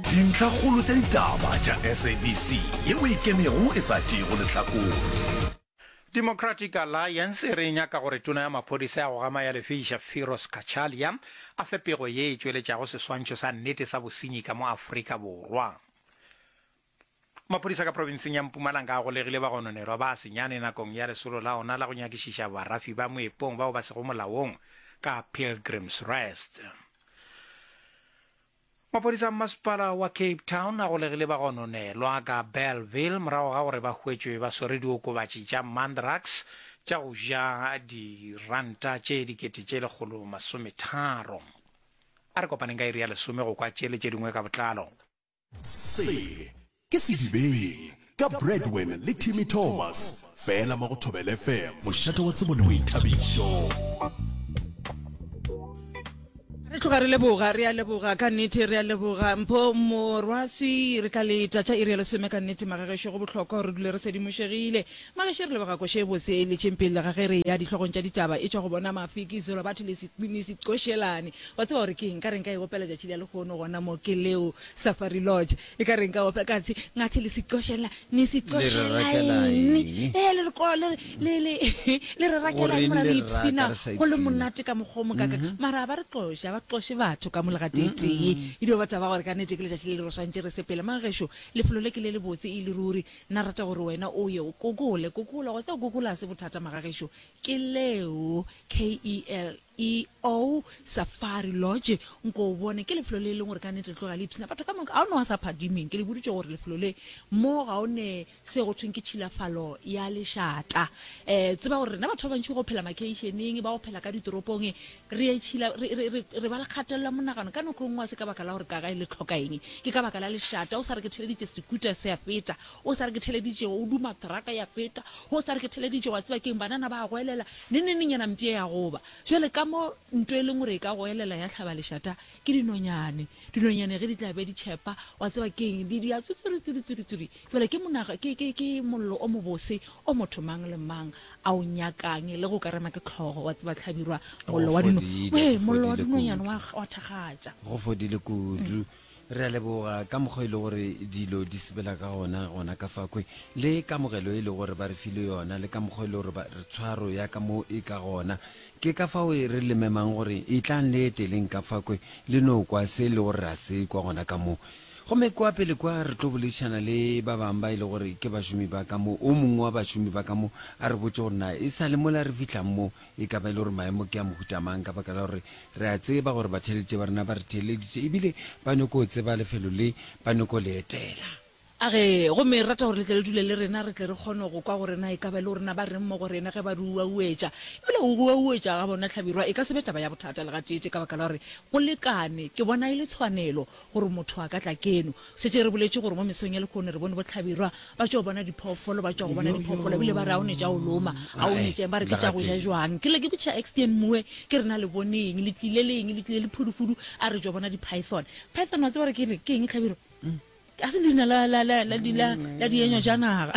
Dintlhakgolo tša ditaba tša SABC yeo e kenego e sa tšeego lehlakore. Democratic Alliance e re e nyaka gore Tona ya Maphodisa ya go Gama ya Lefeisa Firoz Cachalia a fe pego ye e tšweletšago seswantšho sa nnete sa bosenyi ka mo Afrika Borwa. Maphodisa ka provinseng ya Mpumalanga a golegile bagononelwa ba senyane nakong ya lesolo la ona la go nyakišiša barafi ba moepong bao ba sego molaong ka Pilgrim's Rest. Maphodisa a mmasepala wa Cape Town a golegile bagononelwa ka Bellville morago ga gore ba hwetšwe ba swere diokobatši tša mandrax tša go ja diranta tše dikete tše lekgolo masometharo. A re kopaneng ka iri ya lesome go kwa tše le tše dingwe ka botlalo. Se Ke Sedibeng, ka Bradwin le Timmy Thomas, fela mo go Thobela FM. Mošate wa tsebo le boithabišo. Re tloga re leboga re a leboga ka nnete re a leboga mpho morwaswi re tla le tšatša e re ya lesome ka nnete magagesho go bohlokwa gore re dule re sedimošegile mageshe re leboga koše bose le tšempele le ga ge re ya dihlogong tša ditaba e tšwa go bona mafiki zolobathi le seqošelane wa tseba gore ke eng ka re nka e opela tšatši le ya lekgono gona mo ke leo safari lodge E ka re nka opela ka tshe ngathe le sicoshela ni sicoshela eng eh le ko le le le le re rakela eng mara ni psina go le monate ka mokgo mo kaka mm-hmm. mara ba re qosha ba qoshe batho ka molega tete mm-hmm. e e dio batho ba gore ka nete ke le jashi le le roswantse re sepela mang gesho le felo le ke le le botse e le ruri na rata gore wena o ye o kokole kokole go tsa kokole se bothata maga gesho ke leo KEL EO Safari Lodge, nko o bone, ke lefelo le e leng gore ka nnete le tloga le ipshina batho ka moka. Ga o ne wa sa phadimeng, ke le boditše gore lefelo le mo ga o ne se go thweng ke tšhilafalo ya lešata. E, tseba gore rena batho ba bantši ba go phela makeišeneng, ba go phela ka ditoropong, re e tšhila, re, re, re, re ba le kgatelelo ya monagano. Ka nako e nngwe ga se ka baka la gore ka gae le tlhoka eng, ke ka baka la lešata. O sa re ke theleditše sekuta se a feta, o sa re ke theleditše o duma traka ya feta, o sa re ke theleditše wa tseba ke eng, banana ba a goelela. Nenenenyana mpye ya go ba. Bjale ka mo nto e lengore e ka goelela ya hlaba lešata, ke dinonyane. Dinonyane ge di tla be di tšhepa, wa tseba ke eng, di, di ya tswitswiri, tswiri, tswiri, tswiri. Bjale ke monaga, ke, ke, ke mollo o mobose o motho mang le mang a o nyakang, le ge o ka rema ke tlhogo, wa tseba, hlabirwa, Go mollo wa dino, fodile, ee, go mollo wa fodile dinonyane wa, kudu. wa thakgatša. Go fodile kudu. Re a leboga ka mokgwa e le gore dilo di sebela ka gona gona ka fakwe, le kamogelo e le gore ba re file yona, le ka mokgwa e le gore ba re tshwaro ya ka mo e ka gona. Ke ka fao re le memang gore etlang le eteleng ka fakwe le no kwa se e le gore ra se kwa gona ka mo. Gomme kwa pele kwa re tlo boledišana le ba bang ba e le gore ke bašomi ba ka mo. O mongwe wa bašomi ba ka mo a re botše gore na e sa le mola re fihlang mo e ka ba e le gore maemo ke a mohuta mang ka baka la gore re a tseba gore batheeletše ba rena ba re theeleditše ebile ba nyoko o tseba lefelo le ba nyoko le etela. A re, Gomme re rata gore le tle le dule le rena, re tle re kgone go kwa gore na e ka ba e le gorena ba reng mo go rena ge ba re uauetša. Ebile go uauetša ga bona hlabirwa e ka se be taba ya bothata le gateetee ka baka la gore go lekane. Ke bona e le tshwanelo Gore motho a ka tla keno. Šetše re boletše gore mo mesong ya lehono re bone bohlabirwa ba tšwa go bona diphoofolo, ba tšwa go bona diphoofolo, ebile ba re a o ne tša o loma, a o ne tšeng, ba re ke tša go ja jwang. Ke lla ke botšiša Extian Moe, ke re na le bone eng, le tlile le eng, le tlile le phudufudu, a re tšwa bona di-python. Python wa tseba re ke eng, ke eng Hlabirwa? Ga se leina la, la, la, la, la, la dienyojanaga,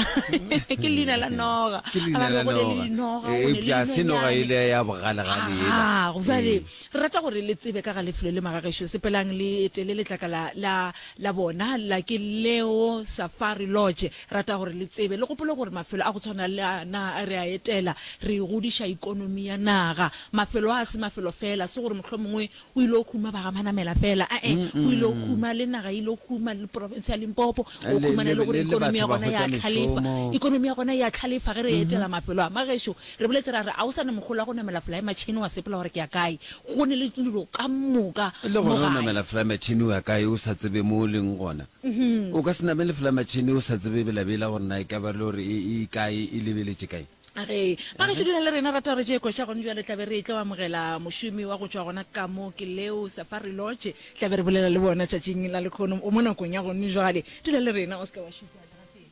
ke leina la noga. Ke leina la noga, eupša ga se noga ele ya bogalegale yela. Haa, jwale. Re rata gore le tsebe ka ga lefelo le magagešo. Sepelang le etele letlakala la, la bona la, ke leo, Safari Lodge. Re rata gore le tsebe, le gopole gore mafelo a go tshwana le a na re a etela, re godiša ekonomi ya naga. Mafelo a a se mafelo feela, se gore mohlomongwe o ile go huma bagamanamela feela, a-e, o ile go huma le naga, e ile go huma le profense ya Limpopo. O Le, khumana le le, gore le, le ekonomi batho ya ba gona hwetša ya tlhalefa. mešomo. Ekonomi ya gona e a tlhalefa ge re etela mafelo a magešo. Re boletse ra re, A o sa ne mogolo wa go namela folaematšhene wa sepela gore ke ya kae? Go ne le dilo ka moka Le mo gona o gae. namela folaematšhene o ya kae o sa tsebe mo o leng gona? O ka se namele folaematšhene o sa tsebe belabela gore na e ka ba lori e e kae, e lebeletše kae. Ge ba gešo dula le rena, rata gore tše koša gone bjale tla be re etla go amogela mošomi wa go tšwa gona ka mo ke Leo Safari Lodge. Tla be re bolela le bona tšatšing la lekhono mo nakong ya gone bjale. Dula le rena, o se ke wa šutha seterateng.